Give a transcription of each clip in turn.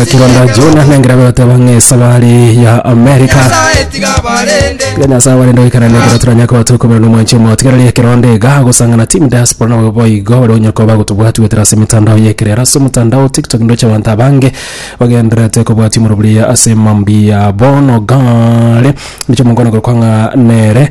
kironda jona nengera goteba ng'esa bari ya amerika tiga nyasaye warenda goikana negera turanya koba tokobera nomwanchi omo tigereria kironda iga gosangana team diaspora nabo boigo bari onye koba gotobwati gwetera ase emitandao yekerero ase omotandao tiktok ndoche abanto abange bagendererete kobwati moroburia ase mambi yabo nogare ndoche omonkono gokwa ng'a nere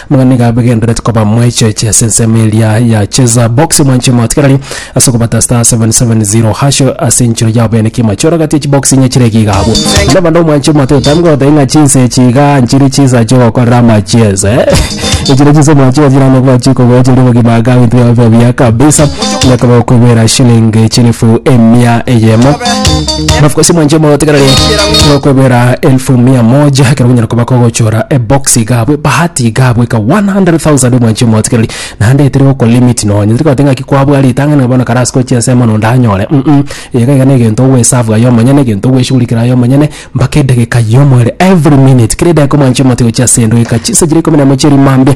Buna nigo abegenderete koba mwaecheche ase ensemo eria ya Cheza Box omwanchwa omotigareri ase okobata star 770 hash ase enchera yabo ene kima chore gati echi box inye chire giga abwo na banda omwanchwa omote otamgo otai ng'a chinse chiga nchiri chisa chogokorera amacheza eh echire chisa omwanchwa chira no bwachi kogocha ri bogima aga bintu yabo biya kabisa na koba kwibera shilling chilifu emia eyemo Mafukosi mwanche motegerere okwegwera elfu mia moja ekero gonyara koba kogochora eboxi gabwe bahati igabwe ka 100,000 mwanche motegerere naende etire goko limit nonye tiri kote ng'aki kwabwa ritang'ani bono karasi gochia ense mono ndanyore mm iga iga negento ogwesave aye omonyene egento ogweshugurikera aye omonyene mpaka edageka yomo ere every minute kera edageka mwanche motigochia ase endageka chinsa chire ikomi na emo chiria mambia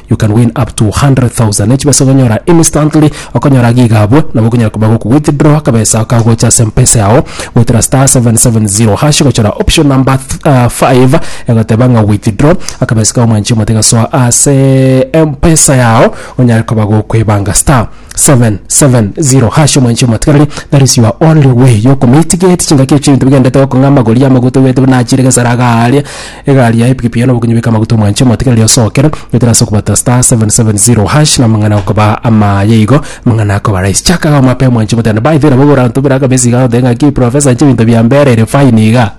You can win up to 100,000 ne chibesa okonyora instantly okonyora agi iga abwo nabo okonyara koba goku withdraw akabesa kagocha ase mpesa yao goetera star 770 hash gochora option number 5 egoteba ng'a withdraw akabesa kao mwanchi omote gasoa ase mpesa yao onyare koba gokwebanga star 770 hash omwanchi omotigareri that is your only way yokomitigate chingaki echio ebinto bigendete gokong'a amagori amaguta oigwete buna achire gesara iga aria Egari ya epikipiki yaye nobokenyi beka amaguta omwanche omotiga riria osokere getera ase okobata star 770 hash na mang'ana akoba amaye igo mang'ana akoba rais chaka iga omape omwanche omotende by the way nabo iga orantubera aka besi iga oteba ng'aki professor inche ebinto bia mbere ere fine iga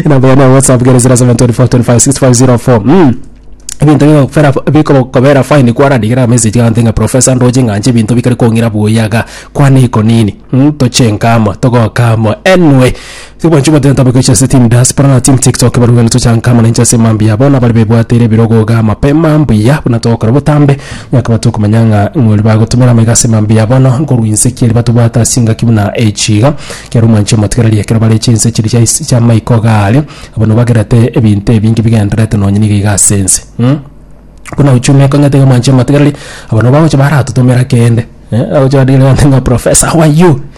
enamba yane ya whatsapp kere 0724256504 mm. ebinto bikokufera bikokobera fine kwarandigera message iga oteba ng'a professor ndoche ng'anche ebinto bikare kong'ira buya iga kwane iko nini mm? toche enka amo togoka amo anyway Tibwanchwa goteta bobe gochia ase team diaspora na team tiktok barabwo gento chanka amo nainche ase mambia abo nabari bebwateire ebirogoga mapema mbuya buna togokora botambe nyakaba tokomanya ng'a ng'ori bagotumera amaiga ase mambia bono nkorwa inse kieri batobwate ase engaki buna echi iga kiaro mwanche motigereri ekero bare chinse chiri chia isi chia maiko gaare abo nobagerete ebinto ebinge bigenderete nonye niga iga ase ense mm. Buna uchumi ekong'ete iga mwanche motigereri abo nobagocha baratotomera kende eh, agocha badigere gante ng'a professor how are you